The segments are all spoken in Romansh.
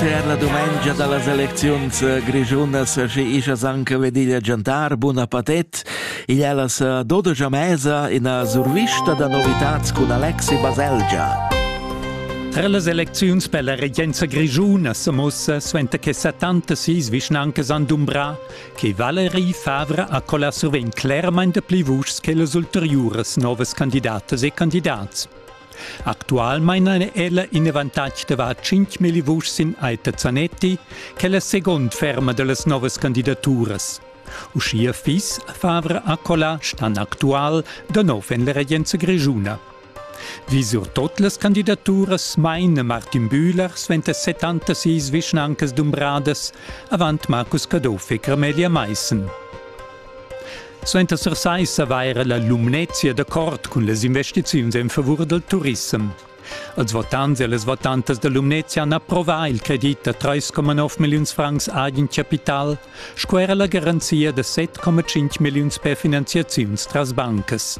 Per la dumengia da las elecziuns eh, grischunas sche isas anche vediglia Giantar Buna Patet. Igl è la dodogia mesa ina survista da novitats cun Alexi Baselgia. Tra las elecziuns per la regenza grischuna sa mussa suenter che 76 vischnancas han dumbrà che Valerie Favre ha colà survegn clermain de pli vuschs che las ulteriuras novas candidatas e candidats. Actualmein ha ella in avantatg da var 5 milli vuschs sin Aita Zanetti, che è la segund ferma dallas novas candidaturas. Uschia fiss Favre Accola stan actual da nov en la regenza grischuna. Wie sur tot las candidaturas meine Martin Bühler sventa 76 vischnancas dumbradas avant Markus Caduff e Camelia Meissen. Suenter sai savair la Lumnezia d'accord cun las investiziuns en favur del turissem. Als votants e les votantas da Lumnezia han approvà il credit da 3,9 milliuns francs Eigenkapital, sco era la garanzia da 7,5 milliuns per finanziaziuns tras bancas.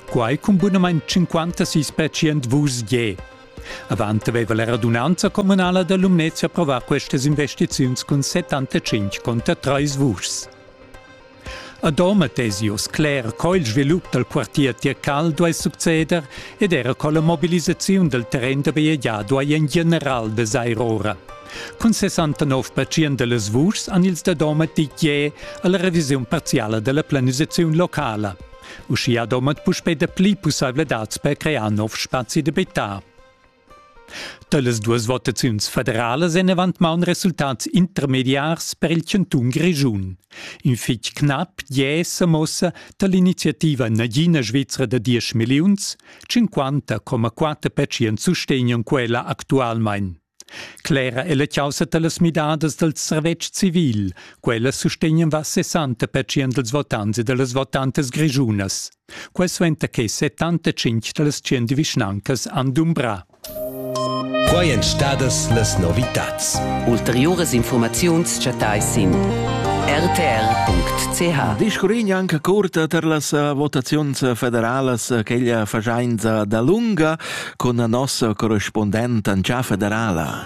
Quai cun bunamain 56% vus je. Avant aveva la radunanza communala da Lumnezia approvà questas investiziuns cun 75 conter 3 vuschs. A Doma tesi uss cler co il svilup dal quartier Tircal duai succeder ed era co la mobilisaziun dal terren da bajegiar duai en general vesair ora. Cun 69 percent da las vuschs han ils da Doma ditg a la revisiun parziala da la planisaziun locala. Uschia Domat puspè dapli pussaivladads per crear nov spazi d'abitar. Talas duas votaziuns federalas èn avant maun resultats intermediars per il chantun Grischun. In fitg knap è semossa da l'iniziativa Nagina Svizra da 10 milliuns, 50,4% sustegnan quella actualmain. Clera è la causa da las midadas dal servetsch civil. Quella sustegnan va 60% dals votants e da las votantas grischunas. Quai suenter che 75 da las tschient vischnancas han dumbrà. Quai èn stadas las novitads. Ulteriuras infurmaziuns chattais sin rtr.ch. Discurrin anche curta per las eh, votaziuns federalas eh, quella fagiainza da lunga con la nossa correspondente Ancia federala.